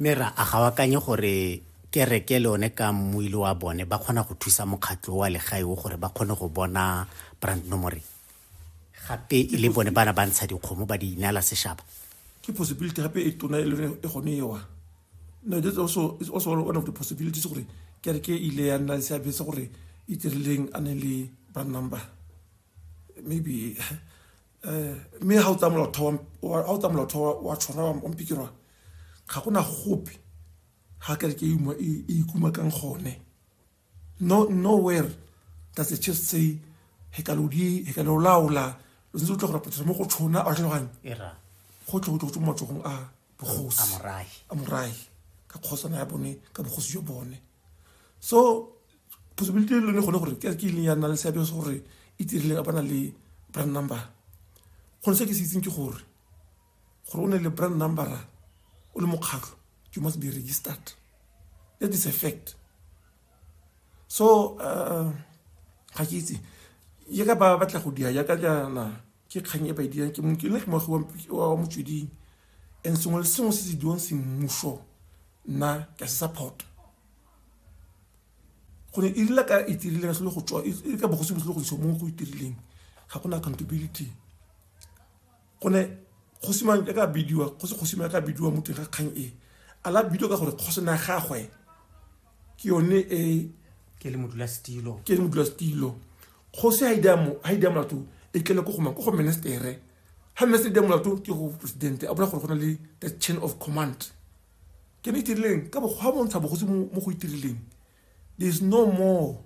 mme ra a ga o akanye gore kereke le one ka mmuile wa bone ba kgona go thusa mokgatlho wa legae o gore ba kgone go bona brand nomore gape e le bone bana ba ntsha dikgomo ba di inela seshaba ke possibility gape e tona e lone e gone ewa no that's also is also one of the possibilities gore kereke e ile ya nna le seabe se gore e dirileng a ne le brand number maybe um mme ga o tsaya molaotheo wa tshwana wa mpikirwa ga gona gope ga kere ke e ikuma kang gone no nowhere does the church say he ka lo di he ka lo laola lo ntse o tla go rapetsa mo go tshona a tlhaloganye go tle go tle go tswa mo matsogong a bogosi a morai ka kgosana ya bone ka bogosi jo bone so possibility e lone gone gore ke ke ileng ya nna le seabe se gore e tirileng a bana le brand number gone se ke se itseng ke gore gore o ne le brand number o le mokgatlho you must be registered that is a fact so uh, ga ke itse ye ka ba batla go dia yaka jaana ke kgang e ba e dirang ke nna ke moagi wa motsweding and sengwe le sengwe se se diwang semmuso nna ke a se support gore e rile ka e tirile se le go tswa e ka bogosi bo se le go tswa mo go itirileng ga gona accountability go ne kgosimang ka ka bidiwa go se kgosimang ka bidiwa mo teng ga kgang e a la bidiwa ka gore kgosi na gagwe ke yone e ke le modula stilo ke le modula stilo go se ha ida mo ha ida molato e kele go goma go go ministere ha minister ida molato ke go president a bona gore go na le the chain of command ke ne itirileng ka bokgwa bontsha bogosi mo go itirileng there is no more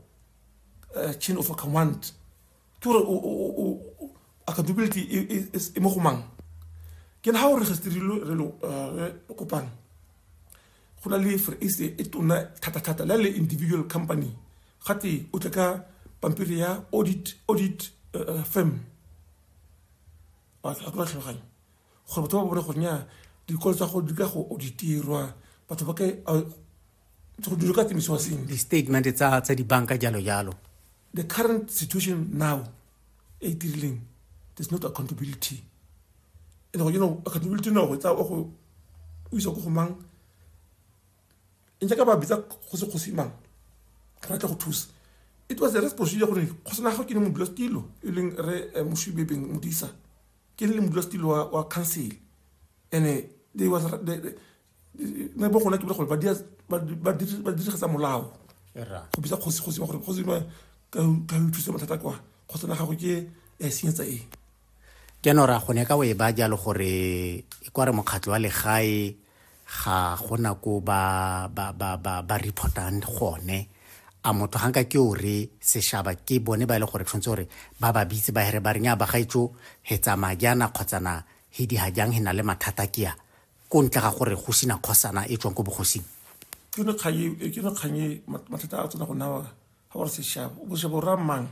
uh, chain of command ke gore accountability e mo go mang ke na ga o registerilwe re uh, kopang go na le free ace e tona thata-thata le le individual company gate o tle ka pampiri ya audit audit uh, firm a tla tlhola tlhaloganya gore batho ba bone gore nya dikolo tsa go di ka go auditirwa batho ba ke go dilo ka tsemisiwa seng di-statement tsa tsa dibanka jalo jalo the current situation now e tirileng there's not accountability and you know accountability no go tsa o go o isa go go mang in jaaka ba bitsa go se go se mang re tla go thusa it was a responsibility gore go sena ga ke ne mo dilo e leng re eh, moshubebeng modisa ke le modulasetilo wa council and-e they was ne bo gona ke bile gore ba dirigetsa molao go bitsa kgosi kgosi gore kgosi ba ka o thusa mathata kwa kgosi na gago ke ya e senyetsa eng jaanong ra gone ka o e ba jalo gore e kware mokgatlho wa legae ga gona ko ba ba ba ba ba reportang gone a motho ga nka ke o re seshaba ke bone ba e le gore tshwanetse gore ba ba bitse ba here ba reng a bagaetso he tsamaya jaana kgotsana he di ga jang he na le mathata ke ya ko ntle ga gore go sina kgosana e tswang ko bogosing ke ne kgaye e ke ne kganye mathata a tsena go nawa ga gore seshaba o seshaba o ra mang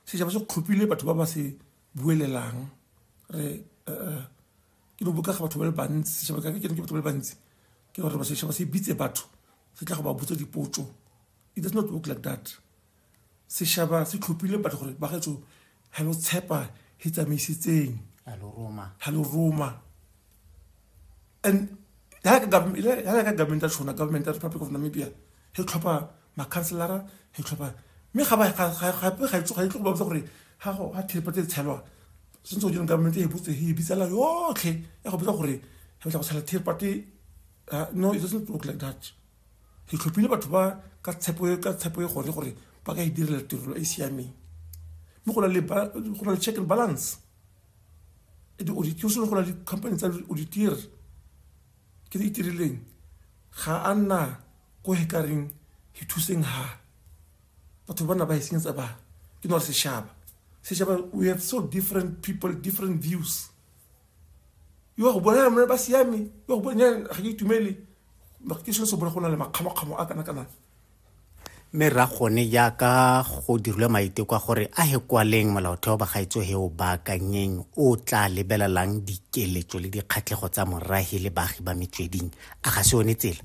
seshaba se kgopile batho ba ba se buelelang re eh, eh, ke no bokega batho ba le bantsi setšhaba ka ke no ke batho ba le bantsi ke gore ba setšhaba se bitse batho se tla go ba botsa dipotso it does not work like that setšhaba se tlhophile batho gore ba gaetso ga lo tshepa e tsamaisitseng ga lo roma and ga ka government ya tshona government ya republic of namibia e tlhopha makhanselara ditlhopha mme ga ba gape ga itse ga itlo go ba botsa gore ga go ga thiripa tse tshelwa sentse go direng government e botse e bitsela yotlhe ya go botsa gore ga batla go tshela thiripate ah, no it doesn't look like that ke tlhophile batho ba ka tshepo e, ka tshepo e gone gore ba ka e direla tirelo e, e siameng mme go na le go na le check and balance e di auditiro sone go na le company tsa auditire ke di itirileng ga a nna ko he ka reng he thuseng ha batho ba na ba e senyetsa ba ke no re seshaba seshaba we have so different people different views yo go bona mona ba siame yo go bona ga ke itumele ke se se bona go na le makgamakgamo a kana kana mme ra gone jaaka go dirilwe maiteko a gore a he kwaleng molaotheo ba gaetso he o baakanyeng o tla lebelelang dikeletso le dikgatlhego tsa morahi le baagi ba metsweding a ga se one tsela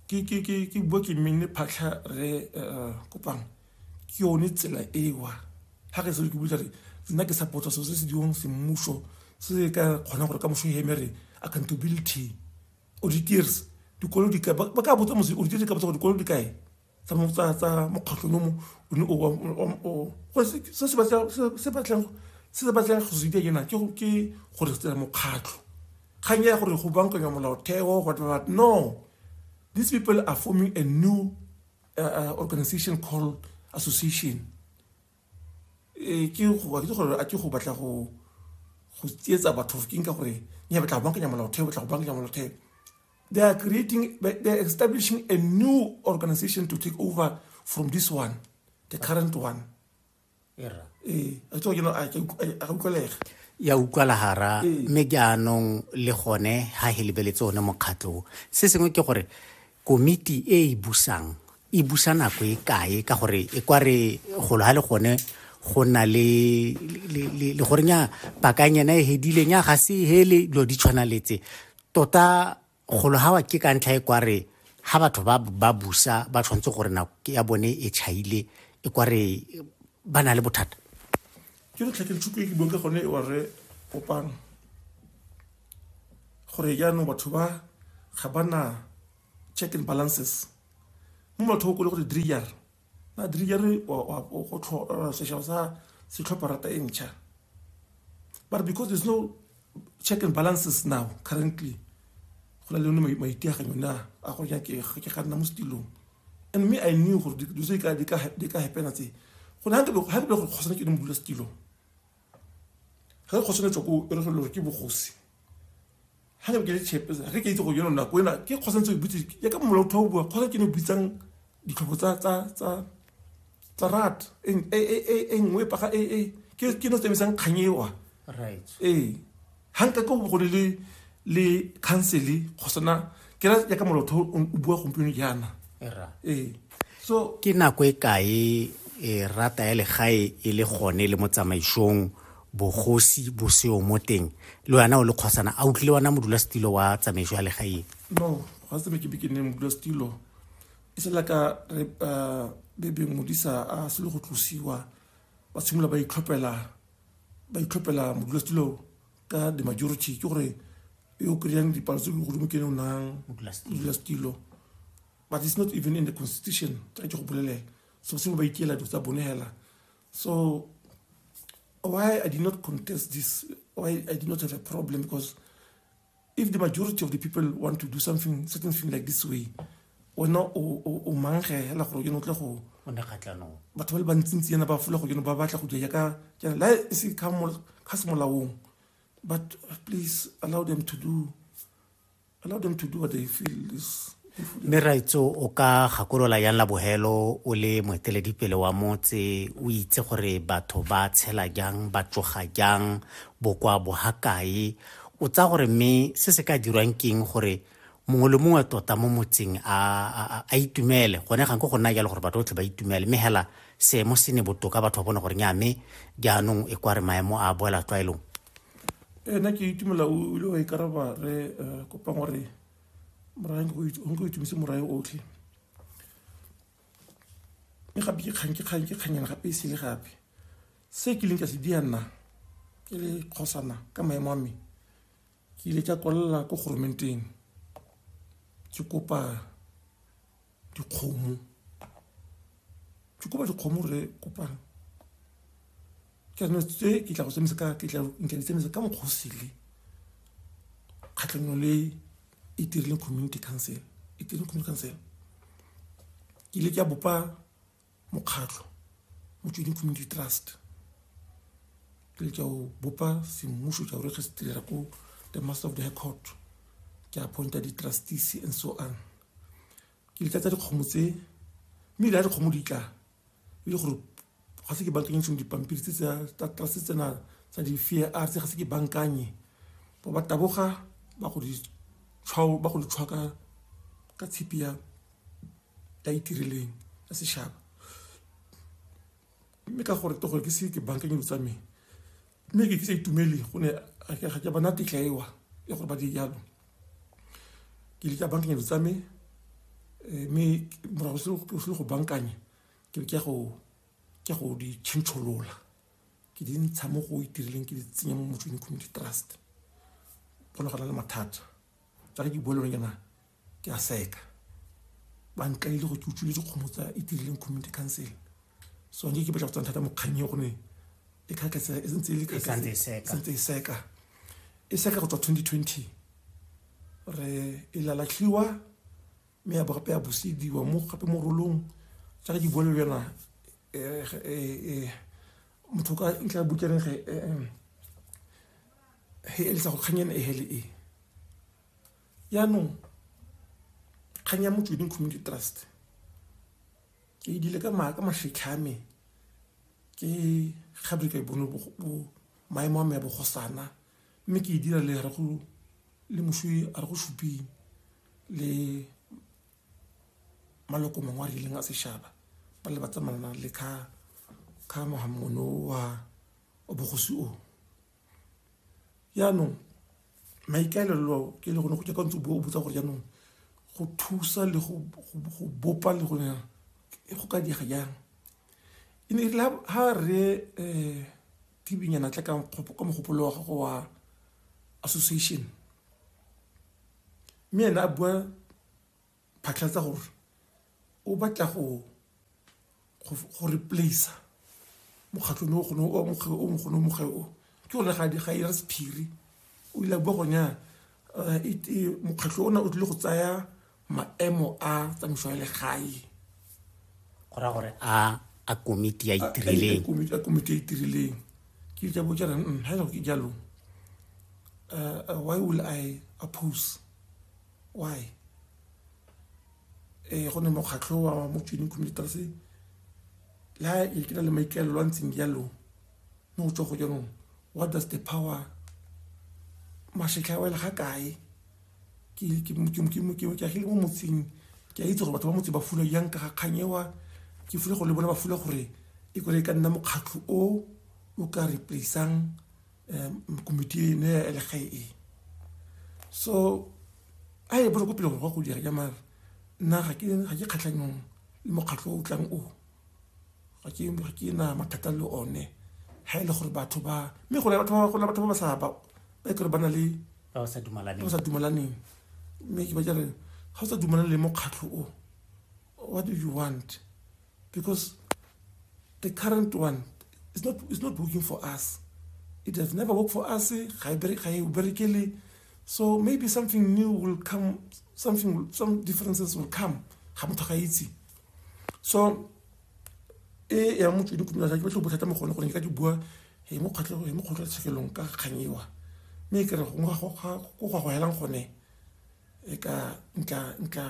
ke bua ke mmenne phatlha re eh, kopang ke yone tsela ewa ga ke seo ke butsa re nna ke support so se se diwang semmuso se se ka kgonang gore ka moso e emere accountability auditors dikolo di kae ba ka botsa mose auditors di ka botsa gore dikolo di kae tsa mokgatlhong o mo o ne o wa se se batlang se se batlang go se dira ke na ke go re tsela mokgatlho kgang ya gore go bankanya molaotheo what what no these people are forming a new uh, uh, organization called association e ke go ke gore a ke go batla go go tsietsa batho ke nka gore ne batla go bankanya molaotheo batla go bankanya molaotheo They are creating, they are establishing a new organization to take over from this one, the current one. Yeah. Eh, I told you, know, I, I, I, I, ya utlwala hara ee. mme jaanong le gone ga he lebeletse one mokgatlho se sengwe ke gore komiti e e busang e busa nako e kae ka gore e kwa re golo ga le gone go na le le gorenya pakanyana e hedileng ya ga se hele dilo di tshwanaletse tota golo ga wa ke ka ntlha e kware ga batho ba ba busa ba tshwanetse gore nako ya bone e chaile e kware ba na le bothata ke re tlhakele thuto e ke buang ka gone e ware kopang gore jaanong batho ba ga ba na check and balances mo batho ba kole gore driar badiri ya re go tlhola sešao sa setlhopha rata e ntšha but because there's no check and balances now currently go na le yone maiteaganyo na a go ja ke ga nna mo setilong and me i knew gore dilo tse di ka hapena tse go ne ga ke go kgosane ke ne modula setilong ga ke kgosane tswa ko e re gore ke bogosi ga ke ke chepe ga ke itse go yona nako ena ke kgosa ntse o butse ya ka mola o bua kgosa ke ne o bitsang ditlhopho tsa tsa tsa tsa rat e e e e nngwe pa ga e e ke ke no tsebisang kganyewa right eh ha nka go go le le council go sona ke ra ya ka mola o bua gompieno jaana era eh so ke nako e kae e rata ya legae e le gone le mo tsamaisong bogosi bo seo mo teng le wena o le kgosana a utlwile wena modulasetilo wa tsamaiso ya legaeng no ga se ke beke ne modulasetilo e sela ka re uh, bebe modisa a se le go tlosiwa ba tshimolola ba itlhophela ba itlhophela modulasetilo ka the majority ke gore yo kry-ang dipalo tse di godimo ke ne o nang modulasetilo but it's not even in the constitution tsa ke go bolelela so se ba ikela dilo tsa bone hela So why I did not contest this, why I did not have a problem, because if the majority of the people want to do something, certain thing like this way, wena o mangge hela gore yone o tle go batho ba le bantsintsi yana ba fola go yone ba batla go dira yaka jana la e se ka se molaong but please allow them to do allow them to do what they feel is mme raitso o ka gakolola yang la bogelo o le moeteledipele wa motse o itse gore batho ba tshela jang ba tsoga jang bokwa bogakae o tsa gore mme se se ka dirwang keng gore mongwe le mongwe tota mo motseng a itumele gone gang ko go nna jalo gore batho botlhe ba itumele mme hela seemo se ne botoka batho ba bone gore nya mme jaanong e kware maemo a boela tlwaelong ena ke itumela o ile wa ikaraba re eh, kopang gore morae nko itumise morae otlhe mme gape ke kgang ke kgang ke kganyana gape e sele gape se ke leng ka se dia nna ke le kgosana ka maemo a mme ke ile ka kwalela ko goromenteng ke kopa dikgomo ke kopa dikgomo re kopang ke no tse ke tla go tsemisa ka ke tla nke di tsemisa ka mokgosi le khatlhanyo le e dirileng community council e dirileng community council ke ile ke bopa mokgatlho motsweding community trust ke le tsa go bopa semmuso tsa gore ge se tirela ko the master of the high court ke appointa di-trustees and so on ke le tlatsa dikgomo tse mme ile ya dikgomo di tla e le gore ga se ke bankanye sengwe dipampiri tse tsa trust tsena tsa di-fear r tse ga se ke bankanye ba ba taboga ba go di tshwa ka tshipi ya ka itirileng ya setšhaba mme ka gore to gore ke se ke bankeng dilo tsa me mme ke kitse itumele go ne ga ke bona tetla ewa ya gore ba di jalo ke leka bankeng dilo tsa me eh, mme morago se le go bankanye ke ke go ke go di tšhentšholola ke di ntsha mo go itirileng ke di tsenya mo motsweding community trust go ne go na le mathata tsa ke bua le lone jaana ke a seka ba nkaile go ke utswile dikgomo tsa e dirileng community council so nke ke batla go tsana thata mokgang e gone e kgakatsa e ntse e le kgakatsa e seka e seka go tswa 2020 re e lalatlhiwa mme ya bogape ya busediwa mo gape mo rolong jaaka ke bua le yona eh, eh, eh, motho ka ntlha ya bukereng ge he elisa go kgang ena e hele e yaanong kgang ya motsweding community trust ke e dile ka maaka mafitlhame ke gabe ka e bone maemo a me ya bogosana mme ke e dira le re go le moswi a re go suping le maloko mangwe a rileng a sešaba ba le ba tsamayana le ka ka mogamono wa bogosi o jaanong maikaelelo ke le gone go jaaka ntse o botsa gore jaanong go thusa le go bopa le gone e go ka diega jang e ne la ha re um tibinyana tla ka mogopolo wa gago wa association mme ene a bua phatlhatsa gore o batla go go replace mokgatlhong o gone o moge o mogone o moge o ke gore ga di ga ira sephiri o ile bo gonya eh, mokgatlho ona o tlile go tsaya maemo a tsamaiso ya legae go raya gore a a komiti ya itirileng komiti ya komiti ya itirileng ke ja bo jana mm ha ke jalo uh, why will i oppose why um go ne mokgatlho wa mo joining communitas le ha e ke na le maikaelelo a ntseng jalo mo go tswa go jaanong what does the power mašetlha a wela ga kae ke agile mo motseng ke a itse gore batho ba motse ba fula jang ka ga kganyewa ke fule gore le bone ba fula gore e kore e ka nna mokgatlho o o ka replaceang um, mkomiti ne ya elegae e so a e bolo ko pele gore gwa go dira jamare nna ga ke kgatlhanyong le mokgatlho o tlang o ga ke na mathata le one ga e le gore batho ba mme gona batho ba ba sa ba e kere ba na le ba sa dumalaneng mme ke ba jare ga o sa dumalane le mokgatlho o What do you want? Because the current one is not, is not working for us. It has never worked for us. Eh? So maybe something new will come, something, some differences will come. So, e ya motho di kumela ke batlo bothata mo gone gore ke ka di bua e mo kgotlo e mo kgotlo tshekelong ka kganyiwa mme ke re go ngwa go go go helang gone e ka ntla ntla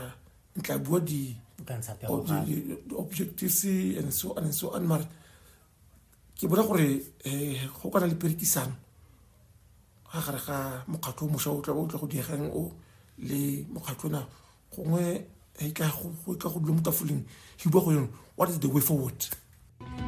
ntla bua di objectives and so on and so on mara ke bona gore eh, go kana le perekisano ga gare ga mokgatlho o mošwa o tla o tla go diegang o le mokgatlho na gongwe e ka go dula mo tafoleng hiba go yone what is the way forward